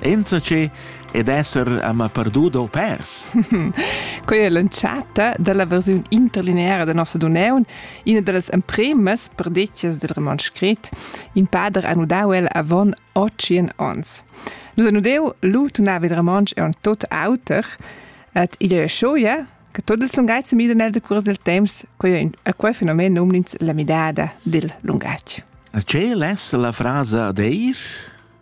Enzatge ed esser ama perduda o pers. Quei è l'entschatta dalla versiun interlineara da nossa Duneun, ina dallas empremas perdetgas del roman scrit. In pader ha nudau el avon otschien ons. Nus ha nudeu lu tunava il romansch è un tot auter, et igl è schoia che tot il lungatg mida nel decurs del temps, quei a quei fenomen nomnins la midada dil lungatg. A ce lessa la frasa d'eir?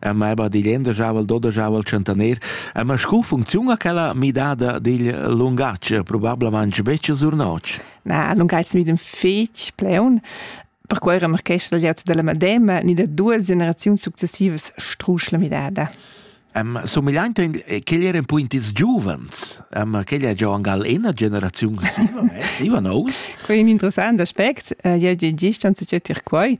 a mai ba digl endajavel dodajavel tschentaner, a ma scu funcziuna quella midada digl lungatg, probablamanc betg sur notg? Na, lungatg mi dem fetg pleun, perquei era marchescha dagl auto dalla madema ni da duas generaziuns successivas strusch la midada. Um, somigliaint ch'egl eran puint ils giuvens. Um, ch'egl è già angal ena generaziun siva, eh? siva nous. Quei è un interessant aspect. Uh, jeu di gist an se quei.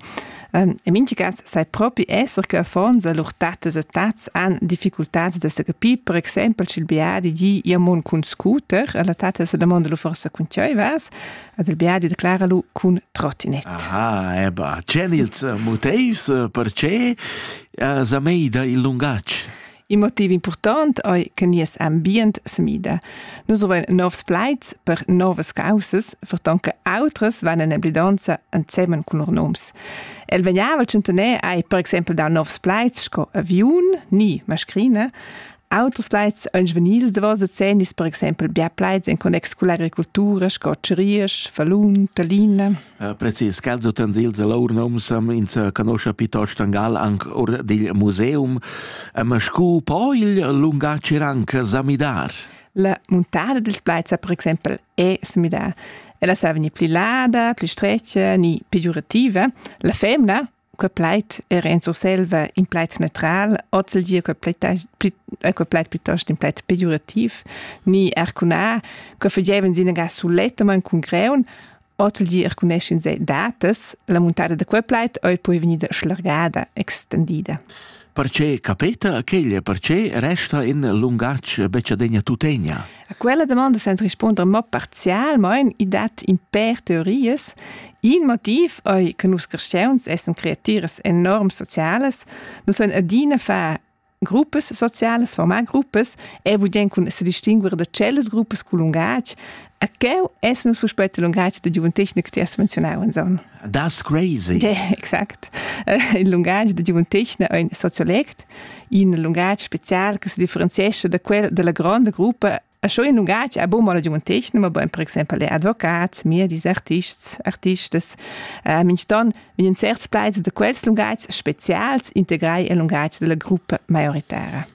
In mincha cas sai propi esser che affons e lur tattas e tats han difficultads da sa capir, per exempel sch'il biadi di «ia mon cun scooter» e la tatta sa damonda lu forsa cun tgei vas ed il biadi declara lu cun trottinet. Aha, eba. Tg'èn ils motivs eh, per che eh, sa meida il lungatg? Il motiv important ei che nies ambient semida. Nus vein novs plaids per novas causas, ferton che autras van en emblidanza ensemen cun lur noms. El vegnava tschentener ei per exempel da novs plaids sco aviun ni mascrina. Auters plaids ein svenils davos decennis, per exempel bia plaids en connex culla agricoltura sco Ceriers, Falun, Talina. Precis quels utens dils lur noms ins canoscha piuttost Tangal anc or dil museum, ma scu po il lungatg er anc sa midar? La muntada dils plaids per exempel è se midà. Ella sa vegnir pli lada, pli stretga ni pegiurativa. La femna que plaid era in Surselva in plaid neutral, oz il dir que plaid, que plaid piuttosto in plaid pegiurativ, ni arcunà, que fagevan sinaga sulettamain cun greun, oz il dir arcuneschin se datas, la muntada da quel plaid oi poi vegnida schlargada, extendida. Perche capeta ch'egl perche resta in lungatg becciadegna tutegna? A quella domanda senza risponder mo parzialmain, i dat in per teorias. Il motiv ei che nus cristians essen creatiras enorm sociales, nus ein adina far gruppas sociales, formar gruppas e voglieren cun se distinguer da cellas gruppas cul lungatg. A quel essen nus puspei il lungatg da giuventetgna che ti has menzionau, Anson. Das Crazy. Ja, exact. Il lungatg da giuventegna è in sociolect, in lungatg spezial che si differenziesce da quel della grande gruppa a schon in lungatg a bon la giuventegna, ma ben per exempel le advocats, medis, artists, artistes, äh, minston in certs plaids da quels lungatgs spezials integrai il lungatg della gruppa maioritara.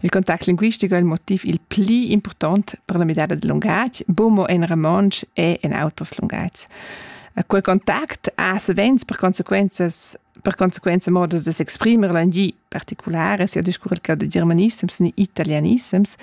Il contact linguistic è il motiv il pli important per la midada del lungatg, bumo en romontsch e en auters lungats. Quel contact ha savens per conseguenza per conseguenza modos de s'exprimer langi particulare sia discurrer che de germanissems ni italianissems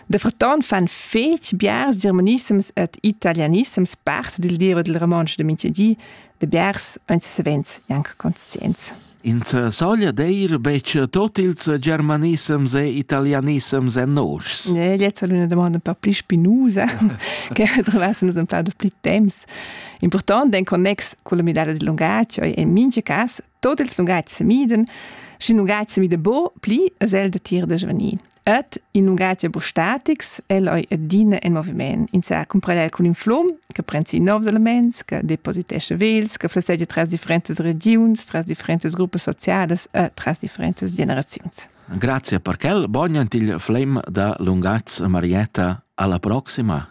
de fraton fan fetg biars germanissems et italianissems part dil diro del romontsch de Mintgedi de biars ein savens janc conscients Ins saglia deir betg tot ils germanissems e italianissems en noschs. Ne, jetzt è una domanda un po' pli spinusa, che trovassemos un plaudo pli temps. Important en connex con la midada del lungatg, in mince cas, tot ils lungats semiden, schi lungatg semida bo pli, as el da tir da svenir. Ed in ungrazia bustatics el oi adina en moviment. In sa cumpradel cun in flum che prensi novs elements, che depositesce vels, che flessegia tras differentas regions, tras differentas gruppas socialas e tras differentas generaziuns. Grazie per quel, buon il flame da lungaz Marietta alla prossima.